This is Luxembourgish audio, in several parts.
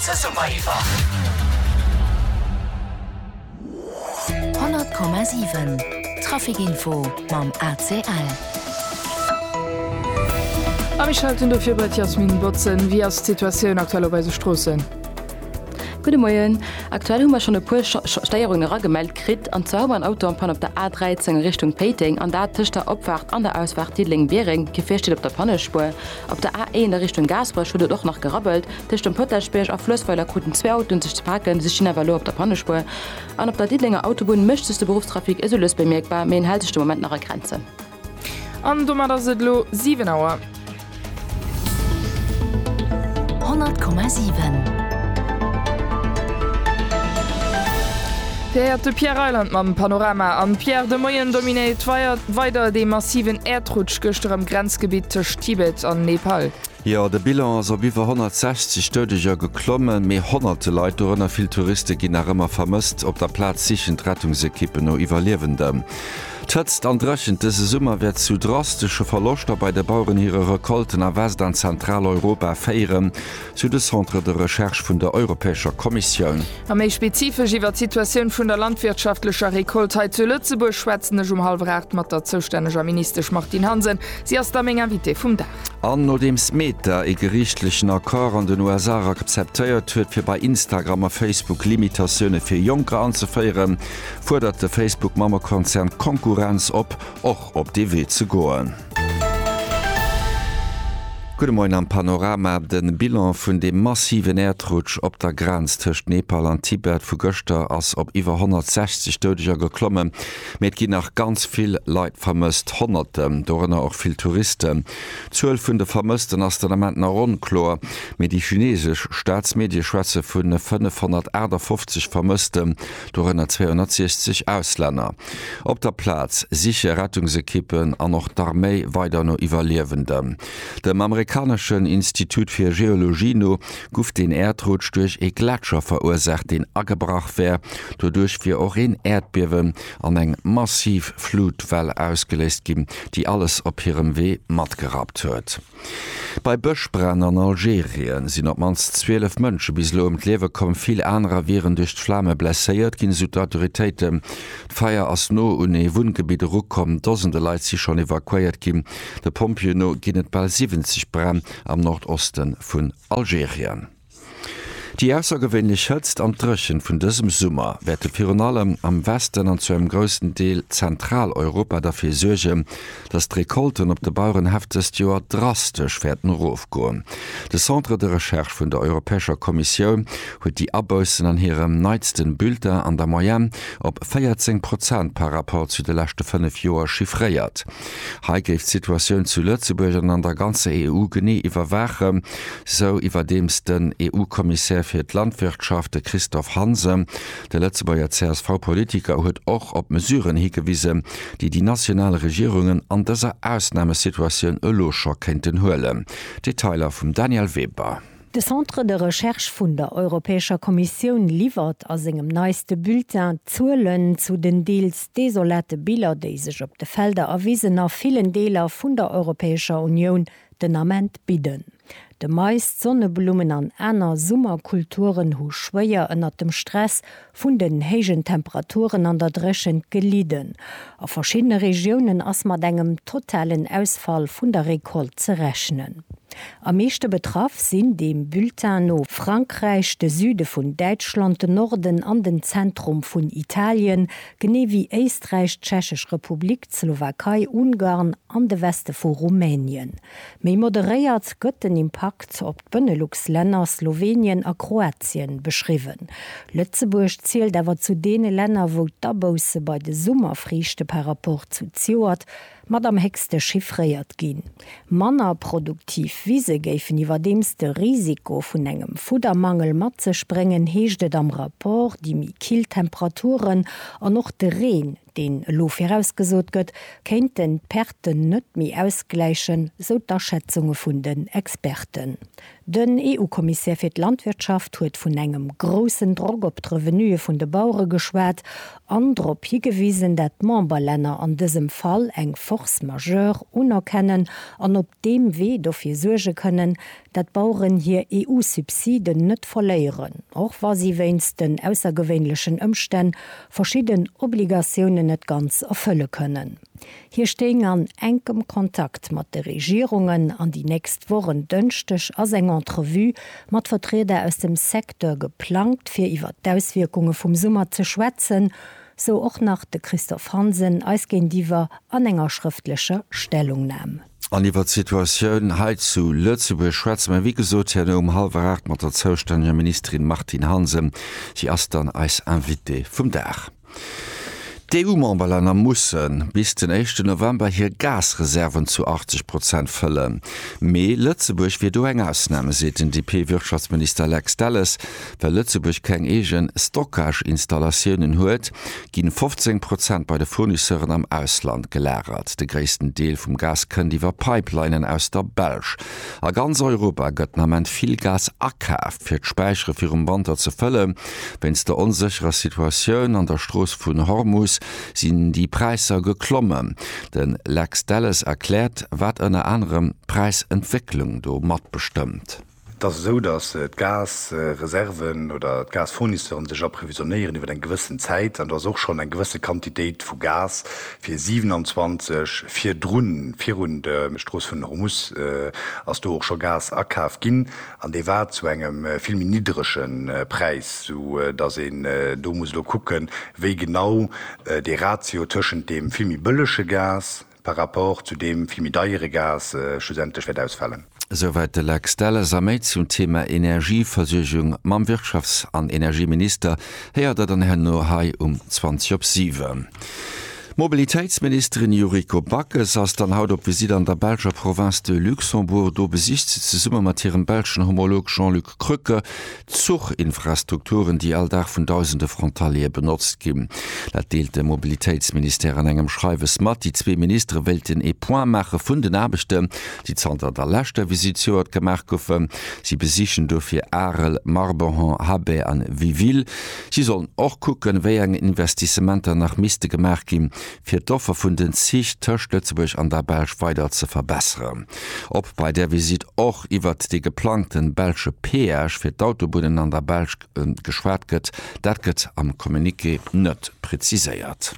100,7 Trafic info mam ACL. A mir schalten dofir bei d'Jasmine Botzen. Wéi ass d'Situatioun aktuell op eise Stroossen? Gudde Moien. Aktuell hu mer schonn e puer Stéierungen eragemellt kritt. An zwar hu mer en Auto en panne op der A13 a Richtung Péiteng, an dat tëscht der Opfaart an der Ausfaart Diddeleng-Biereng. D'Gefier steet op der Pannespuer. Op der A1 a Richtung Gaasperech huet et och nach gerabbelt. Tëscht dem Potaschbierg a Floessweiler kruten zwee Autoen sech ze paken, si stinn awer elo op der Pannespuer. An op der Diddelenger Autobunn mécht sech de Beruffstrafic esou lues bemierkbar, mee en hält sech de Moment nach a Grenzen. An domat ass et elo 7 Auer. 100,7. Dir héiert de Pierre Reyland mam Panorama. Am Pierre, de Moien dominéiert weider dee massiven Äerdrutsch gëschter am Grenzgebitt tëscht Tibet an Nepal. Jo, de Bilan ass op iwwer 160 Doudeger geklommen, mee honnerte Leit, dorënner vill Touriste ginn nach ëmmer vermësst. Op der Plaz sichen d'Rettungsekippen no Iwwerliewenden. D'Hëtzt an Dréchent dëse Summer wäert zu drastesche Verloschter bei de Baueren hire Recolten a West an Zentraleuropa féieren, sou de Centre de Recherche vun der Europäescher Kommissioun. A méi spezifesch iwwer d'Situatioun vun der landwirtschaftlecher Recolte hei zu Lëtzebuerg schwätzen ech um hallwer 8 mat der zoustänneger Ministesch Martine Hansen. Si ass da meng Invitée vum Dag. An nodeems Meta ee geriichtlechen Accord an den USA akzeptéiert huet, fir bei Instagram a Facebook Limitatioune fir Jonker anzeféieren, fuerdert de Facebook-Mammekonzern d'Konkurrenz op, och op dee Wee ze goen. Gudde Moien am Panorama. De Bilan vun deem massiven Äerdrutsch op der Grenz tëscht Nepal an Tibet vu gëschter ass op iwwer 160 Doudeger geklommen. Mee et ginn nach ganz vill Leit vermësst, Honnerten, dorënner och vill Touristen. D'Zuel vun de Vermëssten ass den Ament nach onkloer, mee déi chinesesch Staatsmedie schwätze vu 558 Vermëssten, dorënner 260 Auslänner. Op der Plaz siche Rettungsekippen an och d'Arméi weider no Iwwerliewenden. Dem amerikaneschen Institut fir Geologie no guff den Äerdrutsch duerch ee Gletscher verursaacht, deen agebrach wär. Doduerch wier och een Äerdbiewen an eng massiv Flutwell ausgeléist ginn, déi alles op hirem Wee matgerappt huet. Bei Bëschbränn an Algerie sinn op d'mannst 12 Mënsche bis elo ëm d'Liewe komm, vill anerer wieren duerch d'Flame blesséiert ginn, esou d'Autoritéiten. D'Feier ass no un ee Wunngebitt erukomm, Dosende Leit si schonn evakuéiert ginn. De Pompjeeë no ginn et bal 70 Bränn am Nordoste vun Algerien. Déi aussergewéinlech Hëtzt an d'Dréchent vun dësem Summer wäerte virun allem am Westen an zu engem groussen Deel Zentraleuropa derfir suergen, dass d'Recolten op de Bauerenhäff dëst Joer drastesch wäerten erofgoen. De Centre de Recherche vun der Europäescher Kommissioun huet déi Aboussen an hirem neitsten Bulletin an der Moyenne op 14 Prozent par rapport zu de leschte fënnef Joer chiffréiert. Hei géif d'Situatioun zu Lëtzebuerg an an der ganzer EU genee iwwerwaachen, sou iwwerdeems den EU-Kommissär fir d'Landwirtschaft, de Christophe Hansen. De Lëtzebuerger CSV-Politiker huet och op Mesuren higewisen, déi déi national Regierungen an dëser Ausnamesituatioun elo scho kéinten huelen. Detailer vum Danièle Weber. De Centre de Recherche vun der Europäescher Kommissioun liwwert a sengem neiste Bulletin d'Zuelen zu den deels desolate Biller, déi sech op de Felder a Wisen a villen Deeler vun der Europäescher Unioun den Ament bidden. De Mais, d'Sonneblummen an aner Summerkulturen hu schwéier ënnert dem Stress vun den héijen Temperaturen an der Dréchent gelidden. A verschiddene Regiounen ass mat engem totalen Ausfall vun der Recolte ze rechnen. Am meeschte betraff sinn deem Bulletin no Frankräich, de Süde vun Däitschland, den Norden an den Zentrum vun Italien, genee wéi Éisträich, d'Tschechesch Republik, d'Slowakei, Ungarn an de Weste vu Rumänien. Méi moderéiert gëtt den Impakt op d'Benelux-Länner, Slowenien a Kroatien, beschriwwen. Lëtzebuerg zielt awer zu deene Länner, wou d'Abousse bei de Summerfriichte par rapport zu ziuert mat am héchste chiffréiert ginn. Manner produktiv Wise géifen iwwerdeems de Risiko vun engem Fuddermangel mat sech bréngen, heescht et am Rapport. Déi méi kill Temperaturen an och de Reen deen elo virausgesot gëtt, kéinten d'Perten net méi ausgläichen, sou d'Aschätzunge vun den Experten. Den EU-Kommissär fir d'Landwirtschaft huet vun engem groussen Drock op d'Revenuë vun de Bauere geschwat an drop higewisen, dat d'Memberlänner an dësem Fall eng Force majeure unerkennen an op deem Wee dofir suerge kënnen, dat d'Baueren hir EU-Subsiden net verléieren, och wa si wéinst den aussergewéinlechen Ëmstänn verschidden Obligatiounen net ganz erfëlle kënnen. Hie stéing an enkem Kontakt mat de Regierungen an déi nächst Woch, en Dënschdeg ass eng Entrevue mat Vertrieder aus dem Secteur geplangt, fir iwwer d'Auswierkunge vum Summer ze schwätzen, sou och nach de Christophe Hansen eis géintiwwer an enger schrëftlecher Stellungnam. An iwwert d'Situatioun hei zu Lëtzebuerg schwätze mer, wéi gesot, herno um hallwer aacht mat der zoustänneger Ministerin Martine Hansen. Si ass dann eis Invitée vum Dag. D'EU-Memberlänner musse bis den éischten November hir Gasreserven zu 80 Prozent fëllen. Mee Lëtzebuerg wier do eng Ausnam, seet den DP-Wirtschaftsminister Lex Delles. Well Lëtzebuerg keng eege Stockage-Installatiounen huet, ginn 15 Prozent bei de Fournisseuren am Ausland gelagert. De gréissten Deel vum Gas kënnt iwwer Pipelinen aus der Belsch. A ganz Europa gëtt den Ament vill Gas akaaft, fir d'Späichere virum Wanter ze fëlle. Wéinst der onsécherer Situatioun an der Strooss vun Hormus sinn déi Präisser geklommen. De Lex Delles erkläert, wat ënner anerem d'Präisentwécklung do matbestëmmt. Et ass esou, datt d'Gasreserven oder d'Gasfournisseure sech approvisionéieren iwwer eng gewëssen Zäit an do ass och schonn eng gewësse Quantitéit vu Gas fir 27 virdrun. Virun der Strooss vun Hormus ass do och scho Gas akaf ginn an dee war zu engem vill méi niddrege Präis, sou datt een do muss elo kucken, wéi genau dee Ratio tëschent deem vill méi bëllege Gas, par rapport zu deem vill méi deiere Gas schlussendlech wäert ausfalen. Esouwäit de Lex Delles. A méi zum Thema Energieversuergung mam Wirtschafts an Energieminister héiert der dann herno hei um 20 op 7. D'Mobilitéitsministerin Yuriko Backes ass dann haut op Visitt an der belscher Province de Luxembourg. Do besicht se zesumme mat hirem belschen Homolog Jean-Luc Krücke Zuchinfrastrukturen, déi all Dag vun dausende Frontaliere benotzt ginn. Dat deelt de Mobilitéitsministère an engem Schreiwes mat. Déi zwee Ministere wéilten ee Point maache vun den Aarbechten, déi zanter der leschter Visitt zejoert gemaach goufen. Si besichen dofir Arel, Marbehan, Habay an Wiville. Si sollen och kucken, wéi eng Investissementer nach misste gemaach ginn, fir d'Offer vun den Zich tëscht Lëtzebuerg an der Belsch weider ze verbesseren. Ob bei där Visitt och iwwert dee geplangte belsche Peage fir d'Autobunnen an der Belsch geschwat gëtt, dat gëtt am Communiqué net preziséiert.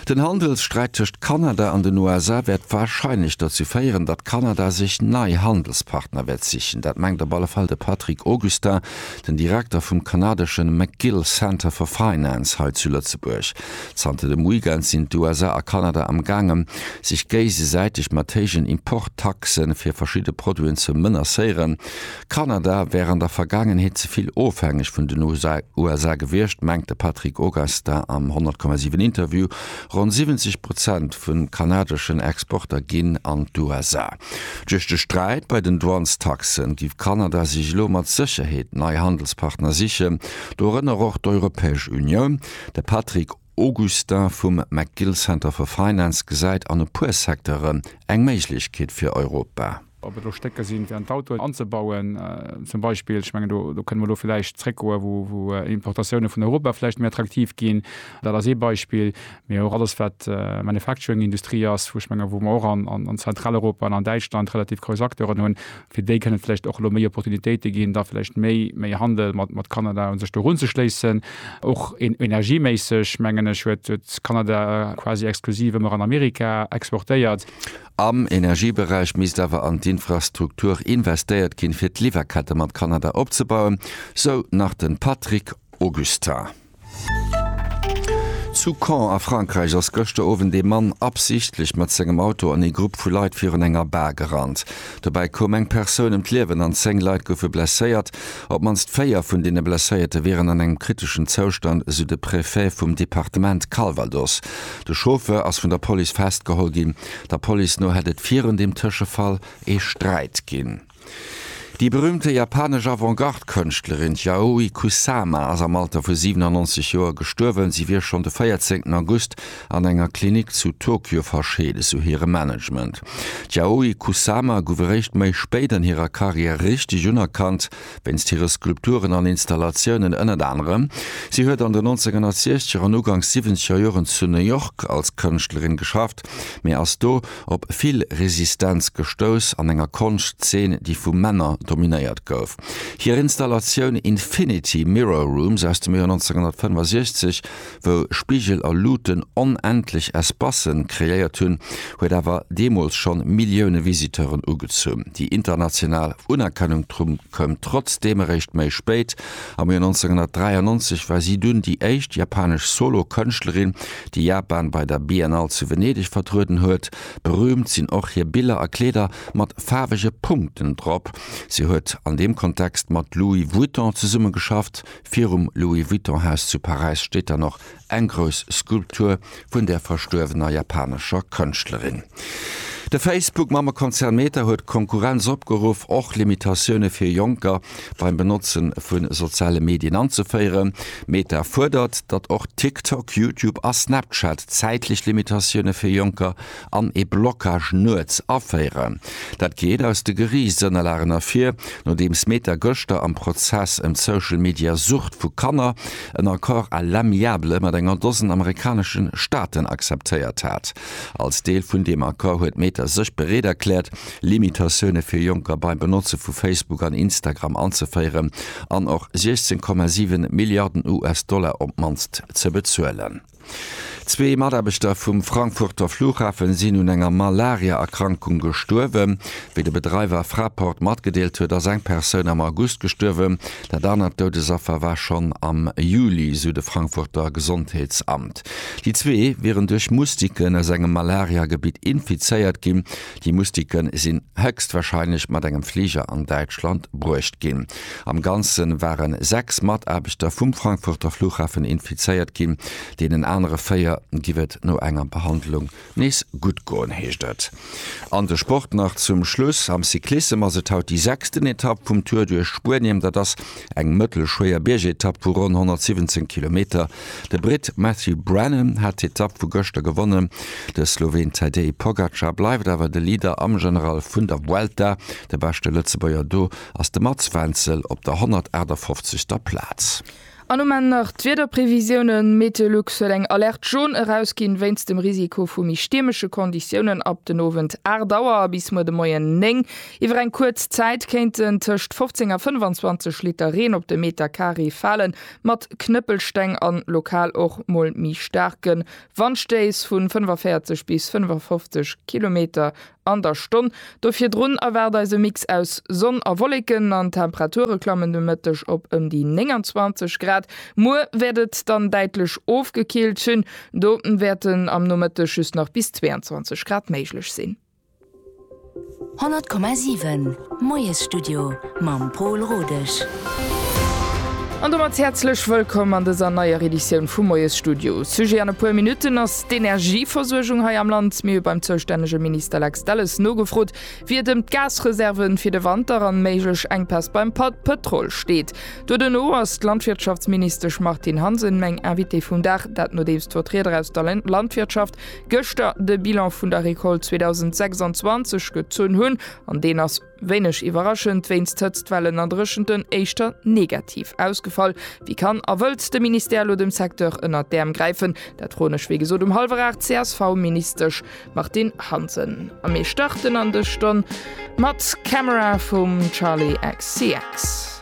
Den Handelssträit tëscht Kanada an den USA wäert warscheinlech dozou féieren, datt Kanada sech nei Handelspartner wäert sichen. Dat mengt op alle Fall de Patrick Augustin, den Direkter vum kanadeschen McGill Center for Finance hei zu Lëtzebuerg. Zanter dem Weekend sinn d'USA a Kanada am gaangen, sech géisesäiteg mat héijen Import-Taxe fir verschidde Produiten ze menacéieren. Kanada wär an der Vergaangenheet ze vill ofhängeg vun den USA gewiescht, mengt de Patrick Augustin am 100,7 Interview. Ronn 70 Prozent vu kanadeschen Exporter ginn an d'USA. Duerch de Sträit bei den Douanes-Taxen giff Kanada sech elo mat Sécherheet nei Handelspartner sichen, dorënner och d'Europäesch Unioun. De Patrick Augustin vum McGill Center for Finance gesäit an e puer Secteuren eng Méiglechkeet fir Europa. Ob et elo Stécker sinn, fir an d'Autoen anzebauen zum Beispill, ech mengen do kënne mer elo vläicht zréckgoen, wou Importatioune vun Europa vläicht méi attraktiv ginn, dat ass ee Beispill, mee och alles wat Manufacturing-Industrie ass, wou ech menge wou mer och an Zentraleuropa an an Däitschland relativ grouss Acteuren hunn, fir déi kënne vläicht och elo méi Opportunitéite ginn, da vläicht méi méi Handel mat Kanada un sech do erunzeschléissen. Och energieméisseg, mengen ech, huet Kanada quasi exklusiv ëmmer an Amerika exportéiert. Am Energieberäich misst awer an d'Infrastruktur investéiert ginn, fir d'Liwwerkette mat Kanada opzebauen, sou nach de Patrick Augustin. Zu Caen a Frankräich ass gëschter Owend ee Mann absichtlech mat sengem Auto an ee Grupp vu Leit virun enger Bar gerannt. Dobäi koum eng Persoun ëm d'Liewen an 10 Leit goufe blesséiert. Op d'mannst 4 vun deene Blesséierte wieren an engem kriteschen Zoustand, esou de Prefet vum Departement Calvados. De Chauffeur ass vun der Police festgeholl ginn. Der Police no hätt et virun deem Tëschefall ee Sträit ginn. Déi berüümte japanesch Avant-Garde-Kënschtlerin d'Yayoi Kusama ass am Alter vu 97 Joer gestuerwen. Si wier schonn de 14 August an enger Klinik zu Tokio verscheeden, sou hire Management. D'Yayoi Kusama gouf eréischt méi spéit an hirer Karriär richteg unerkannt, wéinst hire Skulpturen an Installatiounen ënnert anerem. Si huet an den 1960er an uganks 70er Joren zu New York als Kënschtlerin geschafft, mee ass do, op vill Resistenz gestouss an enger Konschtzeen, déi vu Männer dominéiert gouf. Hir Installatioun Infinity Mirror Rooms aus dem Joer 1965, wou Spigel a Luuten onendlech Espacen kreéiert hunn, huet awer deemools schonn Millioune Visiteuren ugezunn. Déi international Unerkennung koum trotzdeem eréischt méi spéit, Am Joer 1993 war si dunn déi éischt japanesch Solo-Kënschtlerin, déi Japan bei der Biennale zu Venedeg vertrueden huet. Berüümt sinn och hir Biller a Kleeder mat faarwege Punkten drop. Si huet an deem Kontext mat Louis Vuitton zesummegeschafft. Virum Louis-Vuitton-Haus zu Paräis steet dann och eng grouss Skulptur vun der verstuerwener japanescher Kënschtlerin. De Facebook-Mammekonzern Meta huet d'Konkurrenz opgeruff, och Limitatioune fir Jonker beim Benotze vu soziale Medien anzeféieren. Meta fuerdert, datt och TikTok, YouTube a Snapchat zäitlech Limitatioune fir Jonker an ee Blockage nuets aféieren. Dat geet aus de Geriichtsënnerlagen ervir, nodeems Meta gëschter am Prozess ëm d'Social-Media-Sucht vu Kanner en Accord à l'amiable mat enger Dosen amerikanesche Staaten akzeptéiert hat. Als Deel vun deem Accord huet Meta sech bereet erkläert, Limitatioune fir Jonker beim Benotze vu Facebook an Instagram anzeféieren an och 16,7 Milliarden US-Dollar op d'mannst ze bezuelen. Zwee Mataarbechter vum Frankfurter Flughafen sinn un enger Malaria-Erkrankung gestuerwen. Wéi de Bedreiwer Fraport matgedeelt huet, ass eng Persoun am August gestuerwen. Dat anert Doudesaffer war schonn am Juli, sou de Frankfurter Gesondheetsamt. Déi zwee wieren duerch Moustiquen aus engem Malaria-Gebitt infizéiert ginn. Déi Mustike sinn héchstwahrscheinlech mat engem Fliger an Däitschland bruecht ginn. Am Ganze ware sechs Mataarbechter vum Frankfurter Flughafen infizéiert ginn. Deenen anere véier giff et no enger Behandlung nees gutt goen, heescht et an de Sport. Nach zum Schluss am Cyclissem ass et haut déi sechsten Etapp vum Tour duerch Spuenien. Dat ass Eng mëttelschwéier Biergetapp vu ronn 117 Kilometer. De Britt Matthew Branham hat d'Etapp vu gëschter gewonnen. De Sloween Tadej Pogacar bleift awer de Leader am General vun der Vuelta. De beschte Lëtzebuerger do ass de Mats Wenzel op der 158. Plaz. An um Enn nach d'Wiederprevisiounen, Meteolux huet eng Alerte Jaune erausginn wéinst dem Risiko vu méi stiermesche Konditiounen ab den Owend 8 Auer a bis muer de Moien 9 Iwwer eng kuerz Zäit kéinten tëscht 15 a 25 Liter Reen op de Meter Carré falen, mat Knëppelsteng an lokal och mol méi staarke Wandstéiss vu 45 bis 55 Kilometer an der Stonn. Do virdrun erwaart eis e Mix aus Sonn a Wolleken an d'Temperature klammen de Mëtteg op ëm déi 29 Grad. Muer wäert et dann däitlech ofgekillt sinn, do wäerten am Nomëtteg just nach bis 22 Grad méiglech sinn. 100,7 Moiesstudio mam Pol Rodesch. An domat häerzlech wëllkomm an dëser neier Editioun vum Moiesstudio. Sujet an e puer Minutten ass d'Energieversuergung hei am Land. Mir hu beim zoustännege Minister Lex Delles nogefrot, wéi et ëm d'Gasreserven fir de Wanter an méiglech Enkpäss beim Pëtrol steet. Doduerno ass d'Landwirtschaftsministesch Martine Hansen meng Invitée vum Dag, dat nodeems d'Vertrieder aus der Landwirtschaft Gëschter de Bilan vun der Recolte 2026 gezunn hunn, an deen ass, wéineg iwwerraschend, wéinst Hëtztwellen a Dréchenten éischter negativ ausgefall. Wéi kann a wëllt de Ministère elo dem Secteur ënnert d'Äerm gräifen? Dat froen ech, wéi gesot, um hallwer aacht d'CSV-Ministesch Martine Hansen. A mir starten an dës Stonn mat Camera vum Charli XCX.